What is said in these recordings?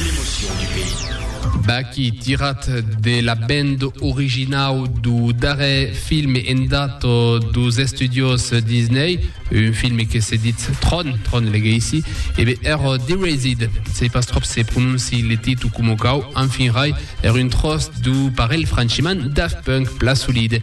L'emotion du pays. Baky tirat de la band originau do darrer film endat dos estudios Disney, un film que se ditz Tron, Tron leguei ici, e be er Derezid, sei pas tròp se prononci le titu coma cau, enfin rai, er un tròç do parelh franchiman Daft Punk pla solide.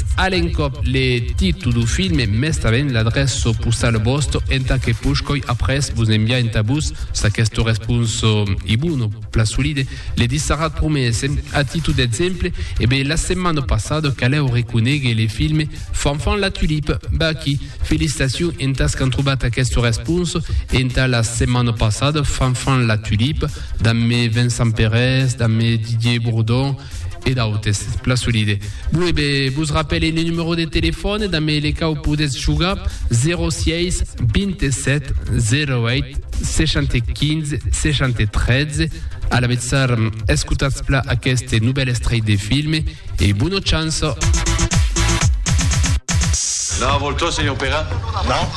A l'encòp le títol du filme mes tanben l'adrèça postala vòsta entà que poshcòi après vos enviar entà vos s'aquesta responsa ei bona o plan solide, le dissarat promese. A títol d'exemple, e be la setmana passada calèu reconéguer le filme Fanfan la tulipe. Be aquí, felicitacion entàs qu'an trobat aquesta responsa entà la setmana passada Fanfan la tulipe, damb me Vincent Perez, damb me Didier Bourdon, e d'autes, plan solide. Bon, e be, vos rapèle le numero de telefòne damb le cau podètz jogar, 06 27 08 75 73. A l'avetzar, escotatz pla aqueste novèl estrelh de filme e bona chance! Non, vòl tot, senhor Pera? Non?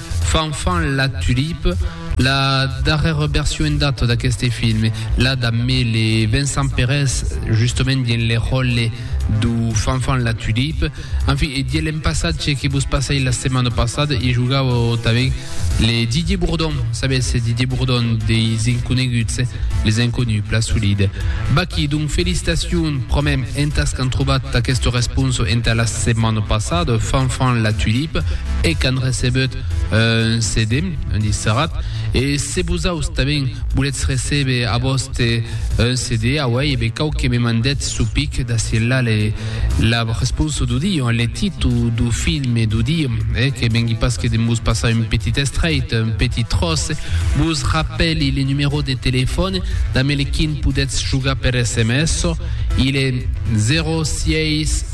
Fanfan la Tulipe, la darrèra version en data d'aqueste film, la damb le Vincent Perez justament dins le ròtle dau Fanfan la Tulipe. En fin, e dieu l'en passatge que vos passèi la setmana passada, i jogava tanben le Didier Bourdon, sabètz, Didier Bourdon deis Inconeguts, Les Inconnus, plan solid. Vaquí, donc, felicitacions promèm entàs qu'an trobat aquesta responsa entà la Setmana passada, Fanfan la Tulipe hec an recebut un CD, un disc serrat, e se vosaus tanben voletz recebe a vòste un CD, auei, e be cau que me mandetz su pic d'ací enlà le, la responsa du dia, le titu du filme du dia, e que vengui pas que de'm vos passar un petit estrèit, un petit tròç, vos rapèli le numerò de telefòn damb le quin podetz jogar per sms, il est 06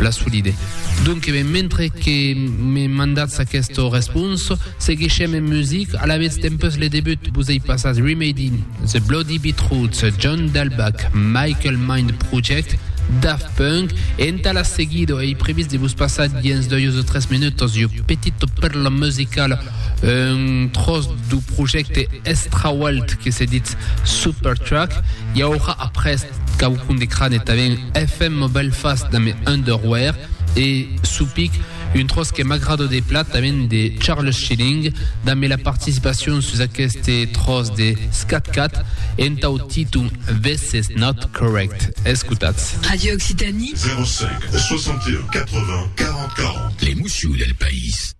la solide. Donc ben mentre que me mandatz aqueste respons, seguishem en music, alavetz dempus le debut vos ei passat Remedy, The Bloody Beetroots, John Dalbach, Michael Mind Project, Daft Punk, entà la seguida ei previst de vos passar dins 2 o 3 minutos jo petit perla musicala un tros du projecte Estrawalt que se ditz Supertruck, i aurà après quauqu'un de crane tanben FM Mobile Fast damb Underwear e Supic, un tròç que m'agrada de plat tanben de Charles Schilling damb la participacion sus aqueste tròç de Skat Kat entau títol This Is Not Correct. Escotatz. Radio Occitanie. 05 61 80 40 40. L'emoció del país.